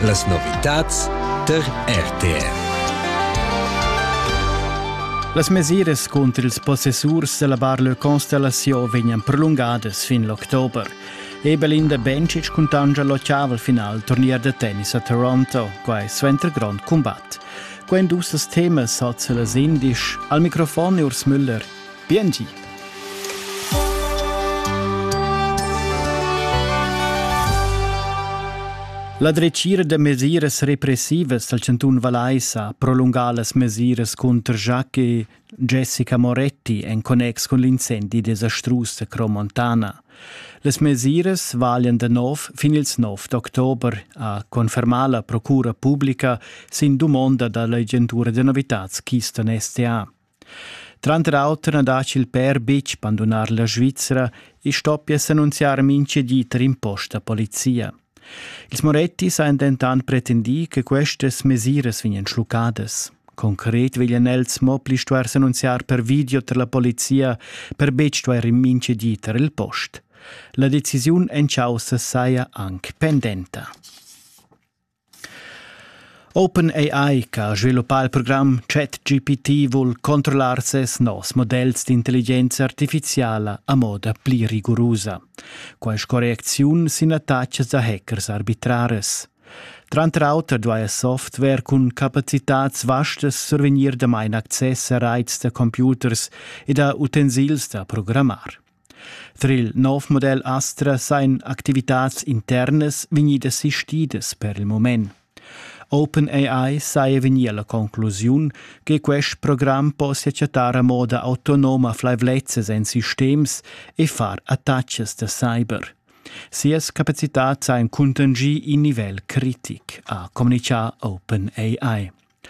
Las novitads tar RTR. Las mesiras cunter ils possessurs della bar Le Constellation vegnan prolungadas fin l'october. Ebelinda Bencic cuntancia l'occhiavel final turnier da tennis a Toronto, quai suenter grond combat. Quando usas temas hat se las indisch. Al microfon Urs Müller Biengi! La dretgira da mesiras repressivas dal chantun Vallais ha prolungà las mesiras cunter Jacques e Jessica Moretti en connex cun l'incendi desastrus da Cromontana. Las mesiras valian da nov fin ils 9 d'october, ha confermà la procura publica sin dumonda da l'agentura da novitads Keystone STA. Tranter auter na daci il pèr betg bandunar la Svizra e stoppia s'annunziar mincha di tar in post da polizia. Ils Morettis han dentant pretendì che questas mesiras vegnan schluccadas. Concret veglian els mo pli stuer s'annunziar per video tar la polizia per betg stuer in mincha di tar il post. La decisiun en caussa saja anc pendenta. OpenAI che ha sviluppà il program ChatGPT vul controllar ses novs modells d'intelligenza artifiziala a moda pli rigurusa. Quai correcziun sin attachas da hackers arbitrares. Tranter auter duai Software cun capacitads vastas survegnir damain access a raits da computers e da utensils da programmar. Tra il nov model Astra sajan activitads internas vegnidas sistidas per il mument. OpenAI saja vegnì a la conclusiun che quest program possia chattar a moda autonoma flaivlezzas en sistems e far attachas da cyber. Sias capacitats han cuntanschì in nivel critic, ha communitgà OpenAI.